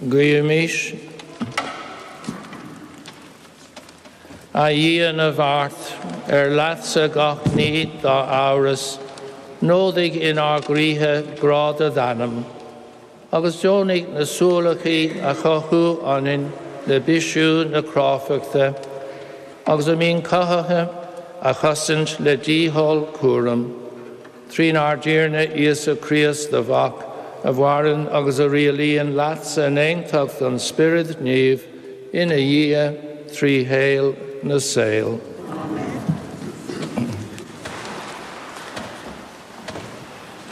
Guímís A Dhia na bhfeart, ar leatsa gach ní dá fheabhas, nódaigh inár gcroíthe grá do d'ainm, agus deonaigh na suáilcí a chothú ionainn le bisiú na cráifeachta, agus a mbíonn cothaithe a chosaint le dícheall cúraim. Trínár dTiarna Íosa Críost, do Mhac, a mhaireann agus a rialaíonn leatsa in aontacht an Spiorad Naomh, ina Dhia, trí shaol na saol.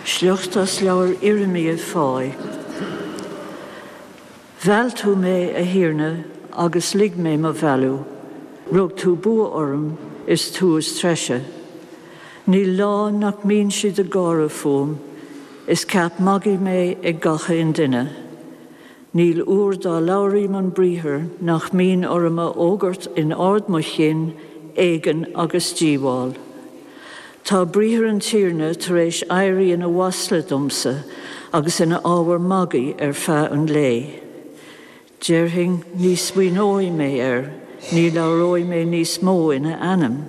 Sliocht as leabhar Irimia Fáidh. Mheall tú mé, a Thiarna, agus lig mé mo mhealladh, rug tú bua orm, is tú is treise. Níl lá nach mbíonn siad ag gáire fúm, is ceap magaidh mé ag gach aon duine. Níl uair dá labhraím an briathar nach mbíonn orm a fhógairt in ard mo chinn éigean agus díobháil. Tá briathar an Tiarna tar éis éirí ina mhasla domsa agus ina ábhar magaidh ar feadh an lae. Déarfainn, Ní smaoineoidh mé air, ní labhróidh mé níos mó ina ainm.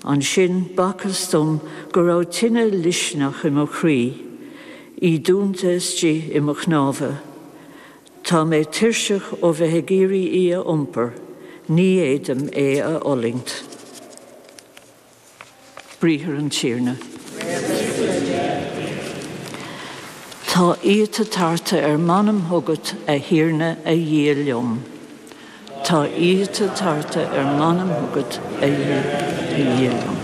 Ansin b'fhacthas dom go raibh tine loiscneach i mo chroí, í dúnta istigh i mo chnámha. Tá mé tuirseach ó bheith ag iarraidh í a iompar, ní fhéadaim é a fhulaingt. Briathar an Tiarna. Tá íota tarta ar m'anam chugat, a Thiarna, a Dhia liom. Tá íota tarta ar m'anam chugat, a Dhia liom.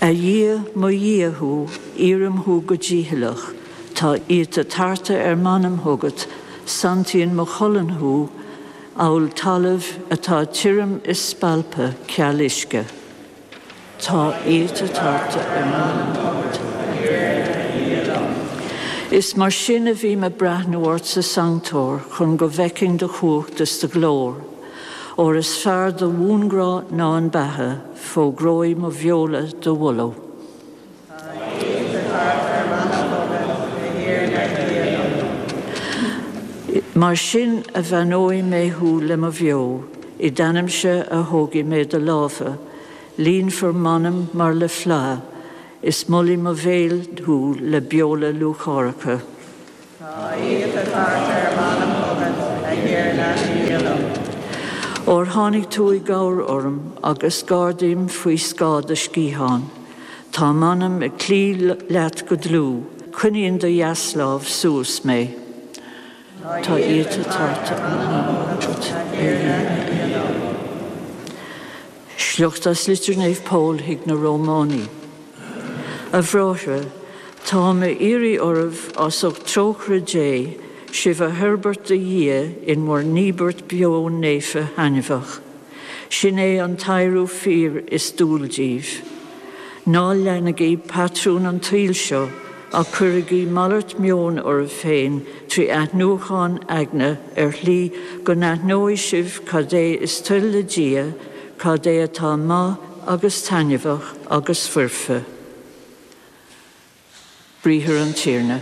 A Dhia, mo Dhia thú, iarraim thú go dícheallach, tá íota tarta ar m'anam chugat, santaíonn mo cholainn thú amhail talamh atá tirim is spalptha ceal uisce. Tá íota tarta ar m'anam chugat, a Dhia liom. Is mar sin a bhím ag breathnú ort sa sanctóir chun go bhfeicfinn do chumhacht is do ghlóir. Óir is fearr do bhuanghrá ná an beatha, fógróidh mo bheola do mholadh. Mar sin a bheannóidh mé thú le mo bheo, i d'ainmse a thógfaidh mé do lámha, líonfar m'anam mar le fleá, is molfaidh mo bhéal thú le beola lúcháireacha. Tá íota tarta ar m'anam chugat, a Thiarna, Dia liom. Óir tháinig tú i gcabhair orm agus gairdím faoi scáth do sciathán. Tá m'anam ag cloí leat go dlúth, coinníonn do dheaslámh suas mé. Tá íota tarta ar m'anam chugat, a Thiarna, Dia liom. Sliocht as litir Naomh Pól chuig na Rómhánaigh. A bhráithre, táim á iarraidh oraibh as ucht trócaire Dé, sibh a thoirbhirt do Dhia in bhur n-íobairt beo naofa thaitneamhach, sin é an t-adhradh fíor is dual daoibh. Ná leanaigí patrún an tsaoil seo, Ach cuirigí malairt meoin oraibh féin trí athnuachan aigne ar shlí go n-aithneoidh sibh cad é is toil le Dia, cad é atá maith agus taitneamhach agus foirfe. Briathar an Tiarna.